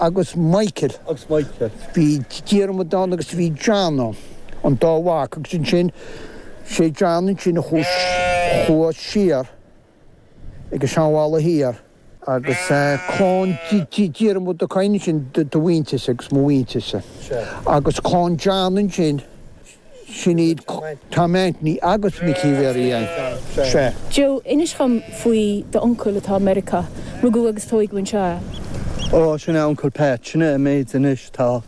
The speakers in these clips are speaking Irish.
agus Michael. Bhí Diarmuid ann agus bhí John ann, an dá mhac, agus ansin sé John ansin a chuaigh, chuaigh siar ag an Seanbhaile Thiar agus clann Diarmada ansin, do mhuintirse agus mo mhuintirse. Agus clann John ansin. Sin iad Tom Anthony agus Micí Mhary. Joe, inis dhom faoi d'uncail atá i Meiriceá. Rugadh agus tóigeadh anseo é. Ó, sin é Uncle Pat. Sin é an méid anois atá,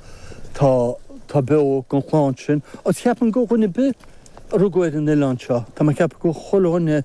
tá, tá beo gon chlann sin. Agus ceapaim go dhuine ar bith a rugadh ar an oileán seo, tá mé a' ceapadh gur chuile dhuine.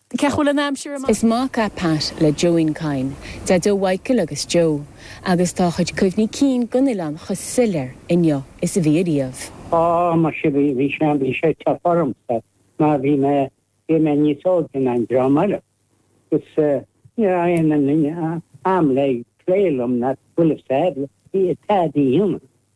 Cé chuile an aimsir amach. Is mac é Pat le John Kyne, Daideo Mhichael agus Joe, agus tá a chuid cuimhní cinn den oileán chomh soiléir inniu is a bhí ariamh. Á, mar sin, bhí, bhí sé, bhí sé tough ormsa, mar bhí mé, bhí mé níos óige ná an dream eile, agus ní raibh aon am le plé liom ná to full of sad, bhí a t-sad í, you know.